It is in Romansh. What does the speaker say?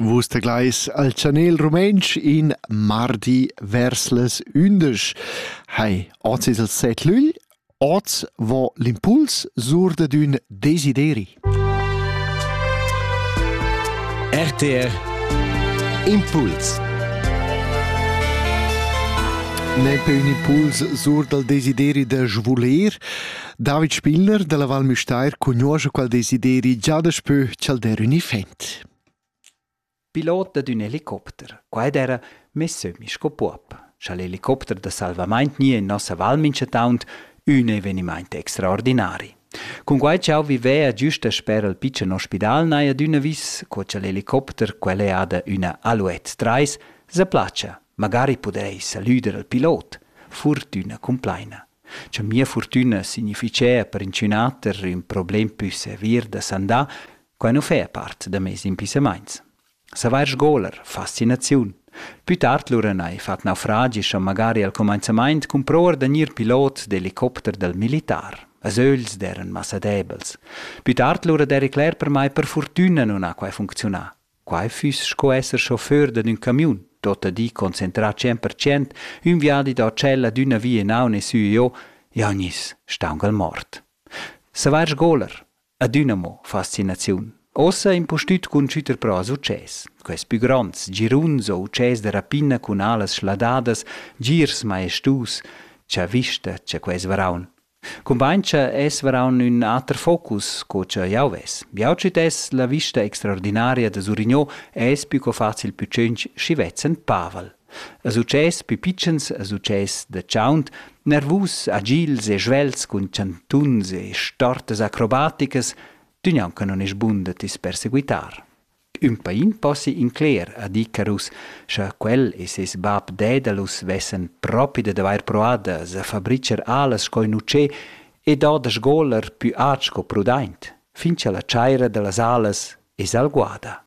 Vus teglais al chanel rumentsch in mardi vers las ündesch. Hai, oz es il set lügl, oz vo l'impuls sur dad ün desideri. RTR Impuls Nempe ün impuls sur dal desideri da svoler. David Spiller dalla Val Müstair cugnuoscha quel desideri già daspö cha'l der ün effet. Pilot dad ün helicopter. Qua era mess sü sco puob. Scha l'helicopter da salvamaint gni in nossa val minchataunt, ün evenimaint extraordinari. Cun quai ch'eu vivea giusta sper al pitschen ospidal n'hai adüna vis co cha l'helicopter, quel è ada üna Alouette 3, se placha, magari pudeis salüder al pilot. Fortüna cumplaina. cha mia furtüna significhea per inchünater ün problem pü sevir da sandà, quai nu fea part da meis impissamaints. Savair sgoler, fascinaziun. Pü tard lura n'hai fat naufragi scha magari al cumainzamaint cumprouer da gnir pilot d'elicopter dal militar. As ögls d'eran massa debels. Pü tard lura d'eri cler per mai per furtüna nun ha quai funcziunà. Quai füss sco esser chauffeur dad ün camiun, tuotta di concentrà tschient per cent, ün viadi da tschel ad üna via inaun e sü e giò, jau gniss staunch'al mort. Savair sgoler, adüna mo fascinaziun. Ossa impustüt cun schütter però success. Quels pü gronds, giruns o utschès da rapina cun alas schladadas, girs majestus, cha vista cha quels varaun, Cumbain cha es varaun ün ater focus co cha jau ves. Jau citess la vista extraordinaria da Surigno e es pü co facil pü tschinch schi vezz ün pavel. A success pü pitschens, a success da chaunt, nervus, agils e svelts cun chantuns e stortas acrobaticas, tü gnanca non es bun da t'is perseguitar. Ün pain possi incler, ha dit Carus, scha quel e seis bap Daedalus vessan propi dad avair proà da s'afabricher alas sco in utschè e dà da sgoler pü aint sco prudaint, fin cha la chaira da las alas es alguada.